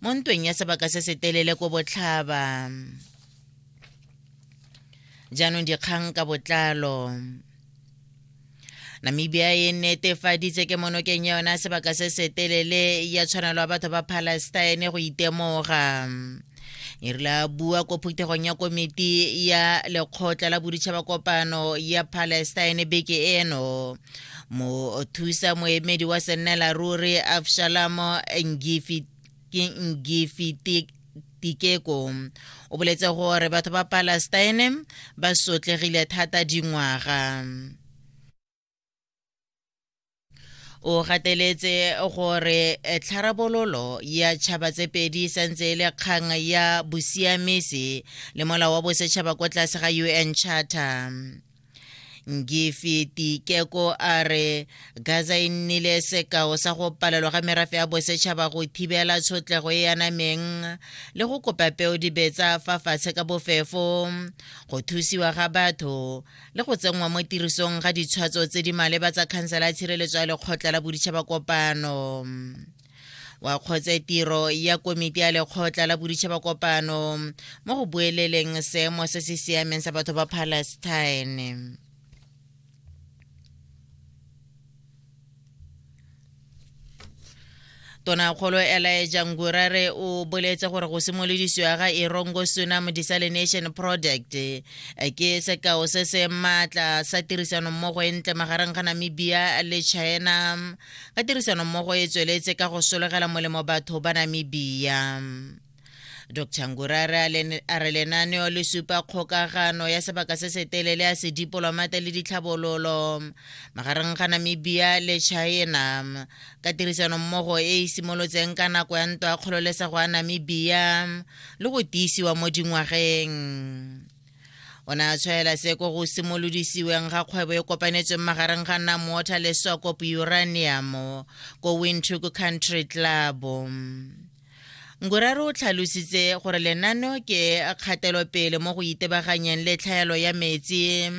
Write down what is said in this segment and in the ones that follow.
mo ntweng ya sebaka se se telele ko botlhaba jaanong dikgang ka botlalo namibia e netefaditse ke monokeng ya yona sebaka se se telele ya tshwanelo ya batho ba palestine go itemoga e rile a bua ko phuthegong ya komiti ya lekgotla la boditšhaba kopano ya palestine beke eno mothusa moemedi wa sennela ruri absalamo ngifitik tikeko o boletse gore batho ba palestine ba sotlegile thata dingwaga o gateletse gore tlharabololo ya tšhaba tse pedi e santse e le kgang ya bosiamisi le molao wa bosetšhaba kwa tlase ga un charter ngifiti keko a re gaza e nnile sekao sa go palelwa ga merafe ya bosetšhaba go thibela tshotlego e yanameng le go kopa peo dibetsa fa fatshe ka bofefo go thusiwa ga batho le go tsenngwa mo tirisong ga ditshwatso tse di maleba tsa khansela ya tshireletso ya lekgotla la boditšhaba kopano wa kgotse tiro ya komiti ya lekgotla la boditšhaba kopano mo go bueleleng seemo se se siameng sa batho ba palestine tonakgolo elaeja ngurare o boletse gore go simolodisiwa ga erongo sunam desalination project eh, ke sekao se se maatla sa tirisanommogo e ntle magareng ga namibia le china ka tirisanommogo e tsweletse ka go solegela molemo batho ba namibia dr ngurare a re lenaneo le supa kgokagano ya sebaka se se telele ya sedipolomate le ditlhabololo magareng ga namibia le china ka tirisanommogo e e simolotseng ka nako ya ntwa ya kgololesego ya namibia le go tiisiwa mo dingwageng o ne a tshwaela se ko go simolodisiweng ga kgwebo e kopanetsweng magareng ga namwater le sokop uranium ko windhoek country club ngoraro o tlhalositse gore lenano ke kgatelopele mo go itebaganyeng le tlhaelo ya metsi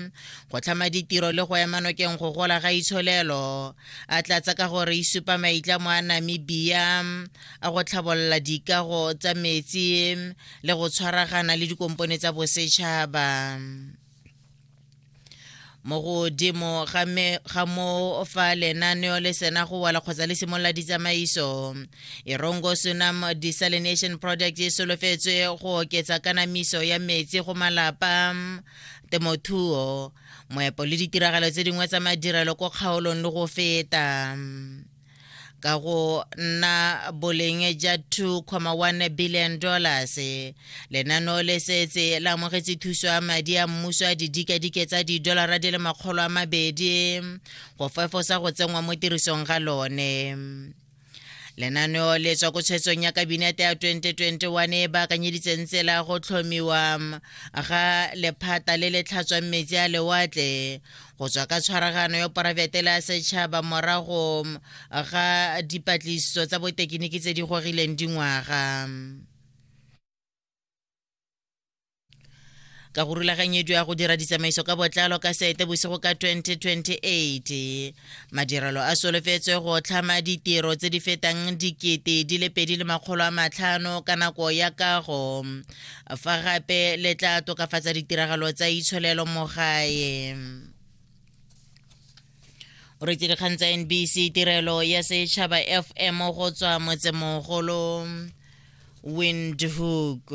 go tlhama ditiro le go ema nokeng go gola ga itsholelo a tlatsa ka gore e supa maitlamo a namibia a go tlhabolola dikago tsa metsi le go tshwaragana le dikompone tsa bosetšhaba mo godimo ga mo fa lenaneo le sena go wala kgotsa le simolola ditsamaiso erongo sunam desalination project e solofetswe go oketsa kanamiso ya metsi go malapa temothuo moepo le ditiragalo tse dingwe tsa madirelo ko kgaolong le go feta ka go nna boleng ja 2,1 billion dollars lenaneo le setse la amogetse thuso ya madi a mmuso a didikadike tsa didolara di le makgolo a mabedi go fefosa go tsenngwa mo tirisong ga lone lenaneo le tswa ko tshwetsong ya kabinete ya 2021 e baakanyeditseng tsela go tlhomiwa ga lephata le le tlhatswang metsi a lewatle go tswa ka tshwaragano ya poraefete le ya setšhaba morago ga dipatlisiso tsa botekiniki tse di gorileng dingwaga ka go rulaganyediwa ya go dira ditsamaiso ka botlalo ka sete bosigo ka 2028 madirelo a solofetswe go tlhama ditiro tse di fetang dikete di le pedi le makgolo a matlhano ka nako ya kago fa gape le tla tokafatsa ditiragalo tsa itsholelo mo gae o retse dikgang tsa nbc tirelo ya setšhaba fm go tswa motsemogolo windhoek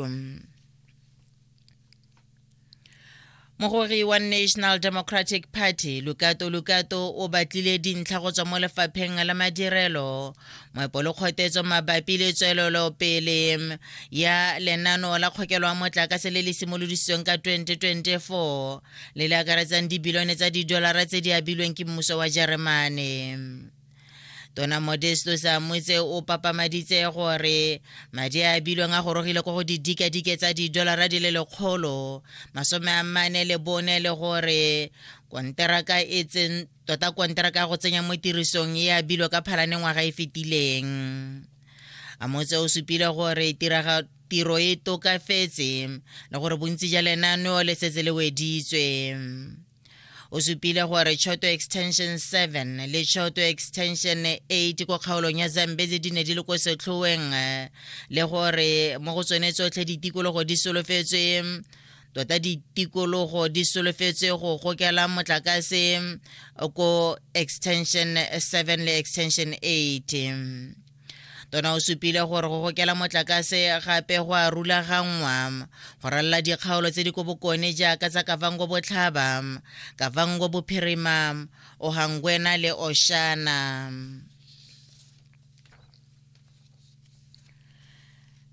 mogori wa national democratic party lukato lukato o batlile dintlha go tswa mo lefapheng la madirelo moepo le kgothetso mabapi le tswelelopele ya lenano la kgokelo wa motlakase le le simolodisitsweng ka 2024 le le akaretsang dibilione tsa didolara tse di abilweng ke mmuso wa jeremane tona modesto sa motse o papamaditse gore madi a bilweng a gorogile ko go didikadike tsa didolara di le lekgolo masome a mane le bone le gore konteraka e tsen tota konteraka ya go tsenya mo tirisong e abilwe ka phalane ngwaga e fetileng a motse o supile gore tiraga tiro e tokafetse le gore bontsi ja lenaneo le setse le weditswe o supile gore choto extension 7 le choto extension 8 ko kgaolong ya zambezi di ne di le ko setlhoeng eh, le gore mo go tsone tsotlhe ditikologo di solofetswe tota ditikologo di solofetswe go gokela motlakase ko extension 7 le extension 8 tona o supile gore go gokela motlakase gape go a rulaganngwa go ralala dikgaolo tse di ko bokone jaaka tsa kavango botlhaba kavango bophirima ohangwena le oshana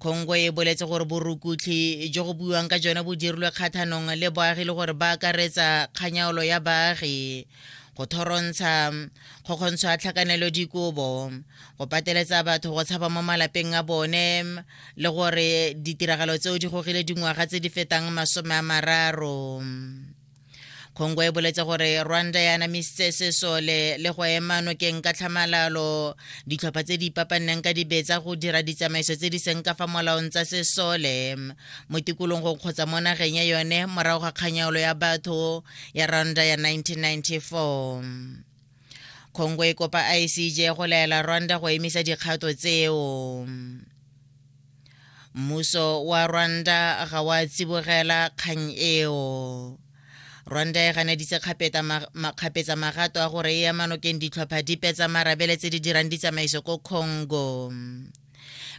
kgongwe e boletse gore borukutlhi jo go buiwang ka jone bo dirilwe kgathanong le baagi le gore ba akaretsa kganyaolo ya baagi go thorontsha go kgontsho a tlhakanelo dikobo go pateletsa batho go tshaba mo malapeng a bone le gore ditiragalo tseo di gogile dingwaga tse di fetang masome a mararo kgongwe e boletse gore rwanda ya anamisitse sesole le go ema nokeng ka tlhamalalo ditlhopha tse di ipapanneng ka dibetsa go dira ditsamaiso tse di seng ka fa molaong tsa sesole mo tikologong kgotsa mo nageng ya yone morago ga kganyaolo ya batho ya rwanda ya 1994 congo e kopa icj go laela rwanda go emisa dikgato tseo mmuso wa rwanda ga wa tsibogela kgang eo rwanda e ganeditse kgapetsa magato a gore e ema nokeng ditlhopha dipe tsa marabele tse di dirang ditsamaiso ko congo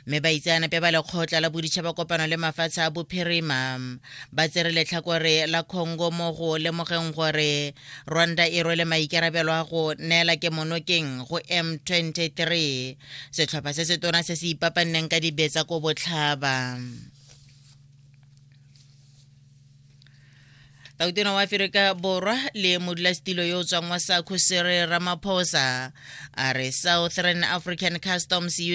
mme baitseanape ba lekgotla la boditšhaba kopano le mafatshe a bophirima ba tsere letlhakore la congo mo go lemogeng gore rwanda e rwele maikarabelo a go neela ke monokeng go m23 setlhopha se se tona se se ipapanneng ka dibetsa ko botlhaba tautona wa aferika borwa le modulasetilo yo o tswang wa sakho sere ramaphosa a re southern african customs